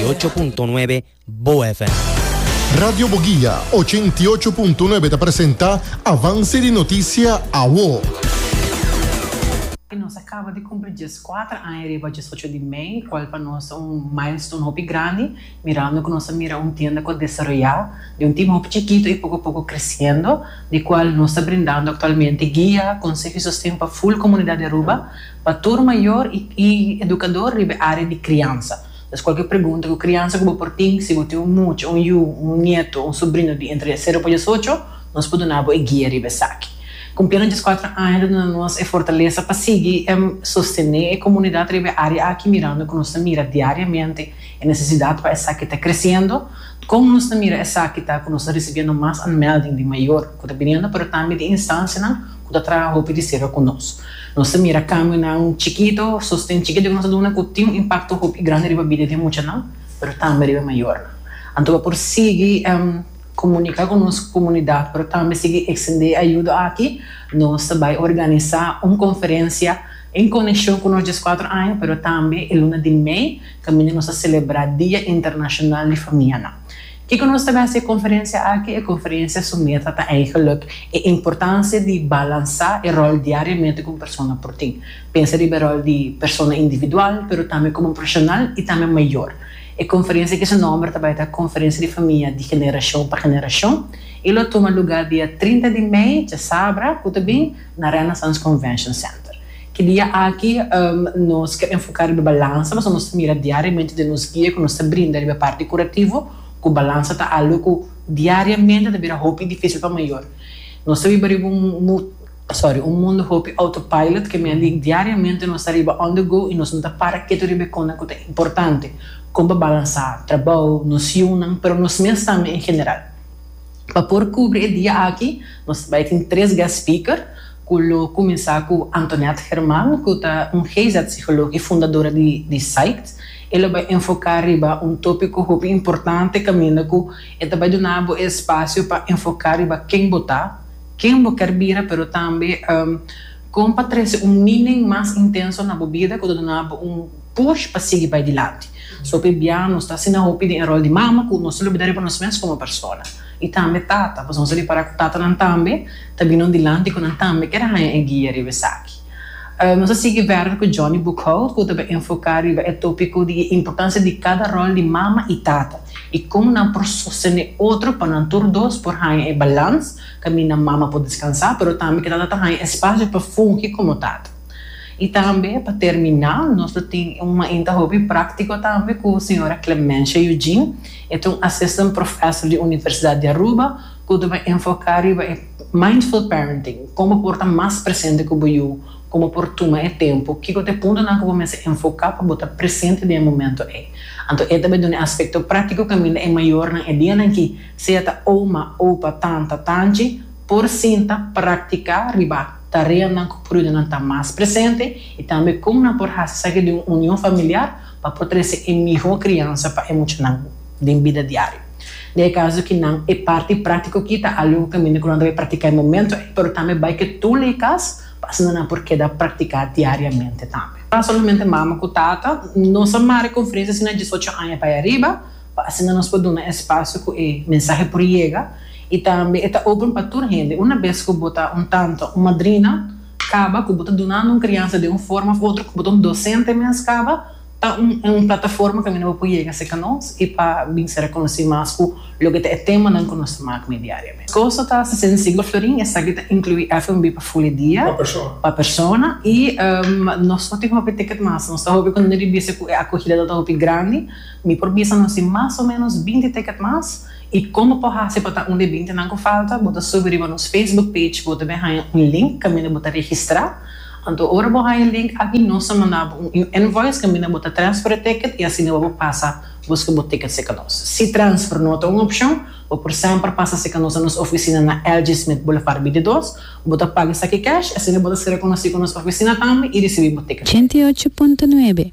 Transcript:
ocho punto nuebe Bo FM. Radio Boguia ochenta i ocho punto nuebe ta presenta Avance di Noticia Awo. I nos a kaba di kumpli djes kuater aña riba djes ocho di mei, kual pa nos ta un milestone hopi grandi, mirando ku nos a mira un tienda ku a desaroyá di un tima hopi chikitu i poko a poko kresiendo, di kual nos ta brindando aktualmente guia, konseho i sosten pa ful komunidat di Aruba. Pa tur mayor y educador riba e area di criansa. Entonces cualkier pregunta cu criansa cu bo por tin, si bo tin un mucha, un yu, un nieto, un sobrino di entre cero pa diesocho, nos por duna bo e guia riba esaki. Cumpiendo diescuatro aña ta duna nos e fortaleza pa sigui sostene e comunidad riba e area aki mirando cu nos ta mira diariamente e necesidad pa esaki ta creciendo. Con nos ta mira esaki ta cu nos ta ricibiendo mas aanmelding di mayor cu ta biniendo pero tambe di instancianan, ku ta traha hopi di serka ku nos. Nos ta mira kambionan chikitu, sosten chikitu ku nos ta duna ku tin un impakto hopi grandi riba bida di e muchanan, pero tambe riba e mayornan. Anto bo por sigui komunika ku nos komunidat, pero tambe sigui ekstendé e ayudo aki. Nos ta bai organisá un konferensia en konekshon ku nos dies kuater aña, pero tambe e luna di mei kaminda nos ta selebrá Dia Internashonal di Famianan. Kiko nos ta mester e konferensia aki? E konferensia su meta ta eigenlik e importansia di balansá e ròl diariamente ku un persona por tin. Pensa riba e ròl di persona individual, pero tambe komo profeshonal i tambe mayor. E konferensia aki su nòmber ta bai ta Konferensia di Famia di Generashon pa Generashon i lo tuma lugá dia trinta di mei, djasabra, ku ta bin, na Renaissance Convention Center. Ki dia aki nos ke enfoká riba balansa, pasobra nos ta mira diariamente den nos guia ku nos ta brinda riba e parti kurativo ku balansa ta algu ku diariamente ta bira hopi difísil pa mayor. Nos ta biba riba un sorry, un mundu hopi autopilot ke mea di diariamente nos ta riba on the go i nos no ta para ketu riba e konnan ku ta importante, kon pa balansá trabou, nos yunan, pero nos mes tambe en general. Pa por kubri e dia aki nos bai tin tres guest speaker ku lo kuminsá ku Antoinette German ku ta un GIZ sikolog i fundadora di Psyched. E lo bai enfoká riba un tópiko hopi importante kaminda ku e ta bai duna bo e spasio pa enfoká riba ken bo ta, ken bo kèr bira pero tambe kon pa trese un minen mas intenso na bo bida ku ta duna bo un push pa sigui bai dilanti. So hopi bia nos ta asina hopi den e rol di mama ku nos ta lubida riba nos mes komo persona. I tambe tata, pasobra nos a repará ku tatanan tambe ta bini un dilanti ku nan tambe kier haña e guia riba esaki. Nos a sigui verder ku Johnny Boekhout ku ta bai enfoká riba e tópiko di e importansia di kada rol di mama i tata i kon nan por sostené otro pa nan tur dos por haña e balans kaminda mama por deskansá pero tambe ku tata ta haña espasio pa fungi komo tata. Y tambe pa termina nos lo tin un mainta hopi practico tambe cu Sra. Clemencia Eugene, e ta un Assistant Professor di Universidad di Aruba cu ta bay enfoca riba e Mindful Parenting, como por ta mas presente cu bo yu, como por tuma e tempo, kico ta e puntonan cu bo mester enfoca pa bo ta presente den e momento ey. Anto e ta bay duna e aspecto practico caminda e mayornan e dianan aki, sea ta oma, opa, tanta, tanchi, por sinta, practica riba. tareanan ku prudenan ta mas presente i tambe kon nan por hasi esaki den un union familiar pa por trese e mihó kriansa pa e muchanan den bida diario. Na e kaso ki nan e parti práktiko aki ta algu ku kaminda ku nan ta bai praktiká e momentu ei, pero tambe bai ke tur lei kas pa asina nan por keda praktiká diariamente tambe. Pa solamente mama ku tata nos a mare konferensia si nan diesocho aña pa e ariba, pa asina nos por duna espacio cu e mensahe por yega y tambe e ta open pa tur hende. Una bes cu bo ta un tanto un madrina caba cu bo ta dunando un crianza den un forma of otro, cu bo ta un docente mes caba, ta un e un plataforma caminda bo por yega cerca nos y pa bin ser reconoci mas cu loke ta e temanan cu nos ta maak mee diariamente. Cosa ta Cecin y Siglo Florin, esaki ta inclui FNB pa ful e dia. Pa persona. Pa persona y nos no tin hopi ticket mas, nos ta hopi contento di bisa cu e acogida ta hopi grandi. Mi por bisa nos di mas o menos binti ticket mas y con bo por haci pa ta un di e binti nan cu falta, bo ta subi riba nos Facebook page, bo ta bin haya un link caminda bo ta registra, anto ora bo haya link aki nos ta manda bo un invoice caminda bo ta transfer e ticket y asina bo por pasa busca bo ticket si ca nos. Si transfer no ta un opcion, bo por semper pasa si ca nos na nos oficina na LG Smith Boulevard bintidos, bo ta paga esaki cash, asina bo ta ser reconoci cu nos oficina tambe y ricibi bo ticket. Ochenta i ocho punto nuebe,